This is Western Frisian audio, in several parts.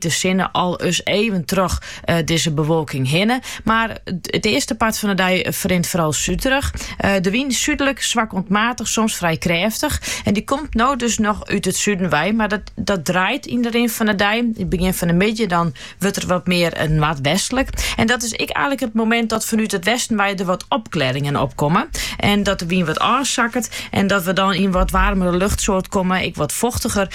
De sinne sil wol ris even troch dizze bewolking hinne, mar it earste part fan de dei ferrint foaral súdrich. De wyn súdlik swak oant maatich, soms frij krêftich, en dy komt no dus noch út it suden wei, mar dat draait yn de rin fan de dei. It begjin fan de middei dan wurdt er wat mear noardwestlik en dat is ek eilik it momint dat fanút it westen wei der wat opklearringen opkomme en dat de wyn wat ôfsakket en dat we dan yn in wat waarmere luchtsoart komme, ek wat fochtiger.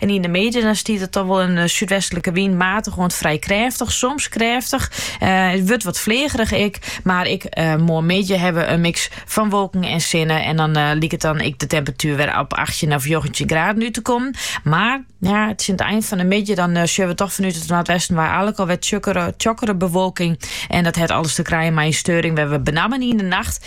En yn de midden stiet it dan wol in eh, súdwestlike wyn, matig oant frij krêftich, soms krêftich. Eh, het wurdt wat flegerich ik, maar ik eh, moar midje hebben een mix van wolken en sinne. En dan uh, liek het dan ik de temperatuur weer op 18 of 19 graden uit te komen. Maar ja, het is in het eind van de midden, dan uh, zullen we toch vanuit het noordwesten waar eigenlijk al weer tjokkere, bewolking. En dat heeft alles te krijgen met een steuring waar we benammen in de nacht